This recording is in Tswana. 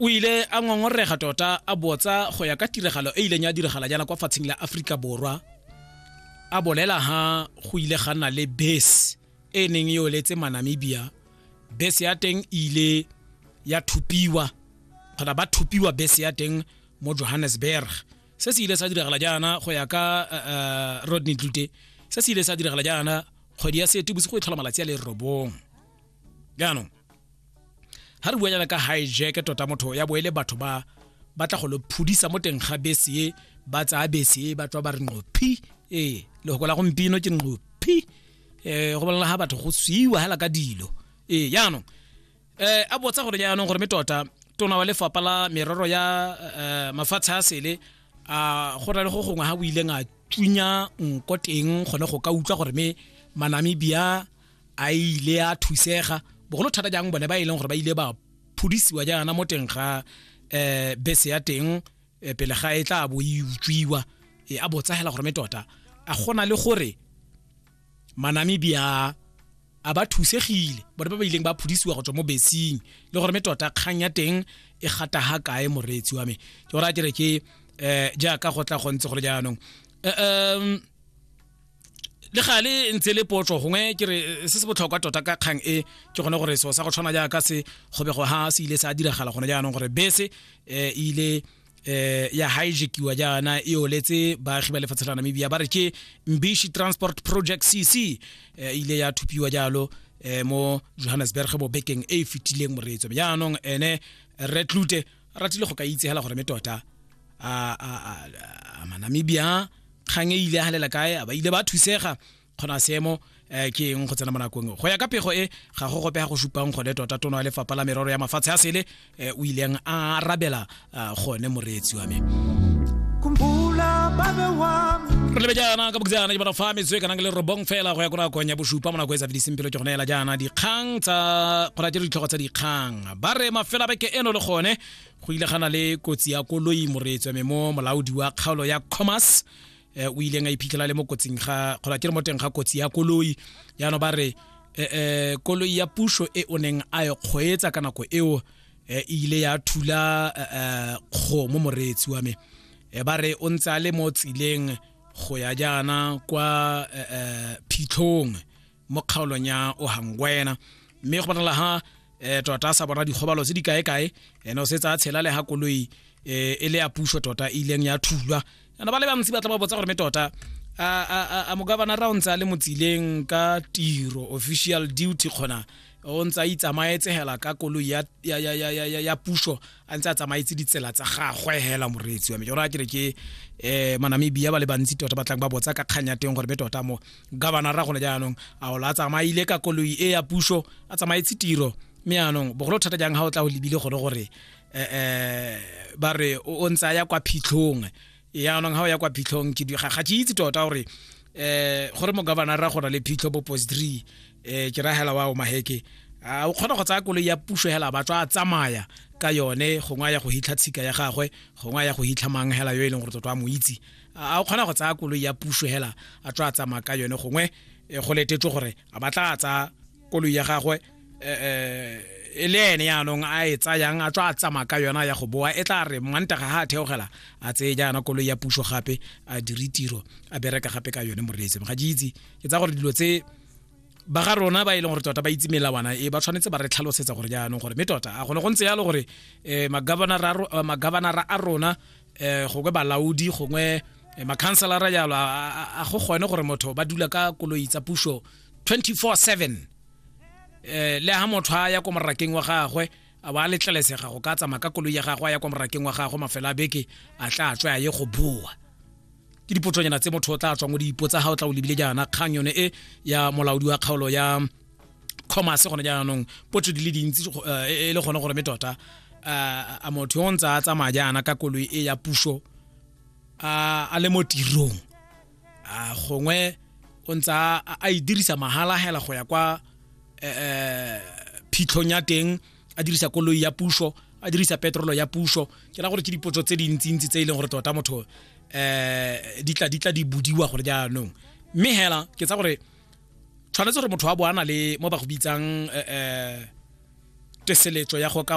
o ile a ngongorega tota a botsa go ya ka tiragalo e ileng ya diragala jaana kwa fatsheng la aforika borwa a bolela ha go ile ga nna le bese e neng e oletse manamibia bese ya teng ile ya thupiwa kgona ba thupiwa bese ya teng mo johannesburg se se ile sa diragala jaana go ya ka uh, eh, eh, rodney dute se se ile sa diragala jaana kgwedi ya seetebosigo e tlhola malatsi a le robong jaanong ga re bua jana ka hijack tota motho ya boele batho ba ba tla go lo phudisa mo teng ga bese e ba tsaya bese e ba tswa ba re nqophi ee le go la gompino ke nqophi eh go bolela ga batho go swiwa hela ka dilo ee jaanong eh a botsa gore jaanong gore me tota tona wa lefapa la merero ya eh, mafatshe a sele a go na le go gongwe ga o ileng a tsunya nko teng gone go ka utlwa gore me manamibia a ile a thusega bogolo thata jang bone ba e leng gore ba ile ba phudisiwa jaana mo teng ga um bese ya teng eh, pele ga e tla bo e utswiwa eh, a botsagela gore me tota a gona le gore manamibia a ba thusegile bone ba ba ileng ba phudisiwa go tswa mo besing le gore me tota kgang ya teng e gata ga kae moreetsi wa me ke gore a kere ke um jaaka go tla go ntse go le jaanong um le ga le ntse le potso gongwe ke re eh, se se botlhokwa tota ka kgang e ke gone gore seo sa go tshwana jaaka se go be go ha se ile sa diragala gone jaanong gore bese um e ile eh ya hijackiwa jaana e oletse baagi ba lefatshe la namibia ba re ke mbishi transport project cc eh, e ile ya thupiwa jalo eh mo johannesburg mo bekeng e e fetileng moreetso jaanong ene retlute a ratile go ka itsegela gore me tota a manamibia kgang e ile a galela kae a ba ile ba thusega kgona seemo um ke eng go tsena mo nakong go ya ka pego e ga go gopega go supang gone tota tono ya lefapha la merero ya mafatshe a sele um o ileng a arabela gone moreetsi wa me re lebe jaana ka boketsana ke bona fa metswe kana ke le robong fela go ya ko nakong ya bosupa mo nako e sa fediseng pelo ke gone ela jaana dikgang tsa kgona tse ditlhogo tsa dikgang ba re mafela beke eno le gone go ile gana le kotsi ya koloi moreetswa me mo molaodi wa kgaolo ya commerce eh, o ileng a iphitlhela le mo kotsing ga kgola ke re mo teng ga kotsi ya koloi jaanong ba re eh, eh, koloi ya puso e o neng a e kgweetsa ka nako eo eh, e ile ya thula eh, eh, kgomo moreetsi wa me eh, ba re o ntse a le mo tseleng go ya jaana kwa eh, eh, phitlhong mo kgaolong ya ohangwena mme go bonala ha um tota sa bona dikgobalo tse di kae-kae ene o se tsa tshela le ga koloi um e le ya puso tota e ileng ya thulwa ana ba le bantsi ba tla ba botsa gore me tota a mogabanara ra o ntse a le motsileng ka tiro official duty kgona o ntse a itsamaetsegela ka koloi ya puso a ntse a tsamaetse ditsela tsa gagwe hela moreetsi wa me jora kere ke um manamibia ba le bantsi tota ba tlang ba botsa ka kgang ya teng gore be tota mo gabana ra gone jaanong a ola a tsamaile ka koloi e ya puso a tsamaetse tiro mme anong bogolo thata jang ga o tla o lebile gone gore um ba re o ntse a ya kwa phitlhong yaanong ga o ya kwa phitlhong ke ga ke itse tota gore um gore mo governor ra gona le phitlho bo post three um ke ra hela wa o maheke a o kgona go tsaya koloi ya puso hela ba tswa a tsamaya ka yone gongwe a ya go hitlha tshika ya gagwe gongwe a ya go hitlha mang hela yo e leng gore totwa a mo itse a o kgona go tsaya koloi ya puso hela a tswa a tsamaya ka yone gongwe eh, go letetswe gore a batla a tsaya koloi ya gagwe eh, eh, e le ene yaanong a e tsayang a tswa a tsamaya ka yona ya go boa e tla re mmantaga ga a theogela a tseye jaana koloi ya puso gape a dire tiro a bereka gape ka yone moreetseng ga ke itse ke tsa gore dilo tse ba ga rona ba e leng gore tota ba itse melawana e ba tshwanetse ba re tlhalosetsa gore jaanong gore mme tota a gone go ntse yalo gore um magabanara a rona um gongwe balaodi gongwe eh, makhanselara jalo a go kgone gore motho ba dula ka koloi tsa puso 24/7 um eh, le ha motho a ya ko morakeng wa gagwe a ba a letlelesega go ka tsamaya ka koloi ya gagwe a ya kwa morakeng wa gagwe mafelo a beke a tla tswe a ye go boa ke dipotsonyana tse motho o tla tswang o dipotsa ga o tla o lebile jaana kgang yone e ya molaodi wa kgaolo ya commerce gone jaanong potso di le dintsi eh, e, e le gone gore me tota eh, a motho yo ntse a tsamaya jaana ka koloi e ya puso a le mo tirong a gongwe o ntse a e dirisa mahala hela go ya kwa eh, phitlhong ya teng a dirisa koloi ya puso a dirisa petrolo ya puso ke ra gore ke dipotso tse dintsintsi tse e leng gore tota motho um di tla di tla di budiwa gore jaanong mme hela ke tsa gore tshwanetse gore motho wa bo a na le mo ba go bitsang um teseletso ya go ka